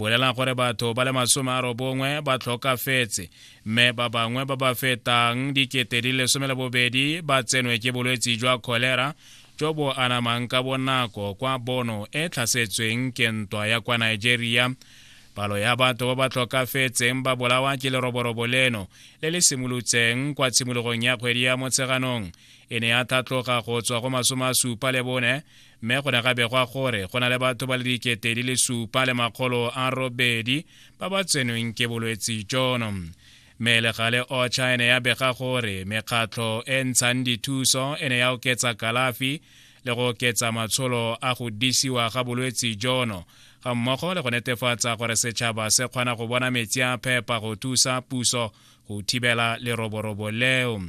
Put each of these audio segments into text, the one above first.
bolelang gore batho ba le masome a robongwe ba tlhokafetse mme ba bangwe ba ba fetang dikete di lesome le bobedi ba tsenwe ke bolwetsi jwa kholera jo bo anamang ka bonako kwa bono e tlhasetsweng ke ntwa ya kwa nigeria palo ya batho ba ba tlhokafetseng ba bolawa ke leroborobo leno le le simolotseng kwa tshimologong ya kgwedi ya motsheganong e ne ya tlhatloga go tswa go masome a supa le bone mme go ne ga begwa gore go na le batho ba le dikete di le supa le makgolo a robedi ba ba tsenweng ke bolwetsi jono mme le gale ocha e ne ya bega gore mekgatlho e ntshang dithuso e ne ya oketsa kalafi le go oketsa matsholo a go disiwa ga bolwetsi jono ga mmogo le go netefatsa gore setšhaba se kgona go bona metsi a phepa go thusa puso go thibela leroborobo leo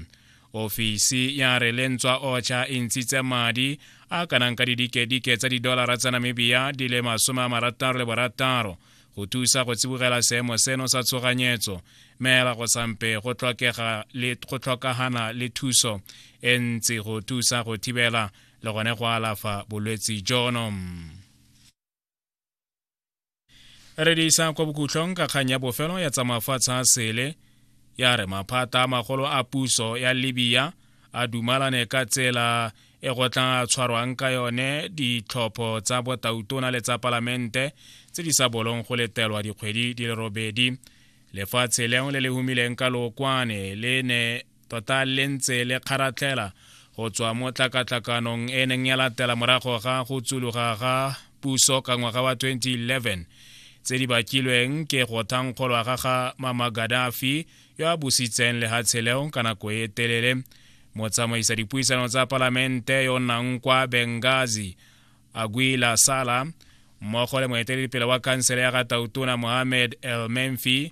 ofisi ya re lentswa ocha e ntshitse madi a kanang ka didikedike tsa didolara tsa namibia di le masome a marataro le borataro go thusa go tsibogela seemo seno sa tshoganyetso meela go sampe go tlhokagana le thuso e ntsi go thusa go thibela le gone go alafa bolwetsi jono re di isa kwa bokhutlhong ka kgang ya bofelo ya tsamafatshe a sele ya re maphata a magolo a puso ya libya a dumalane ka tsela e go tla tshwarwang ka yone ditlhopho tsa botautona le tsa palamente tse di sa bolong go letelwa dikgwedi di le robedi lefatshe lengwe le le humileng ka lookwane le ne Tota le ntse le kgaratlhela go tswa mo tlakatlakanong e neng ya latela morago ga go tsuluga ga puso ka ngwaga wa 2011 tse di bakilweng ke go thankgolwa ga ga Mama Gaddafi yo a busitseng lehatshe leo ka nako e telele. Motsamaisa dipuisano tsa palamente yo nnang kwa Benghazi Aguila Sala mmogo le moeteledipele wa khansele ya ga Tautona Mohamed El Menfi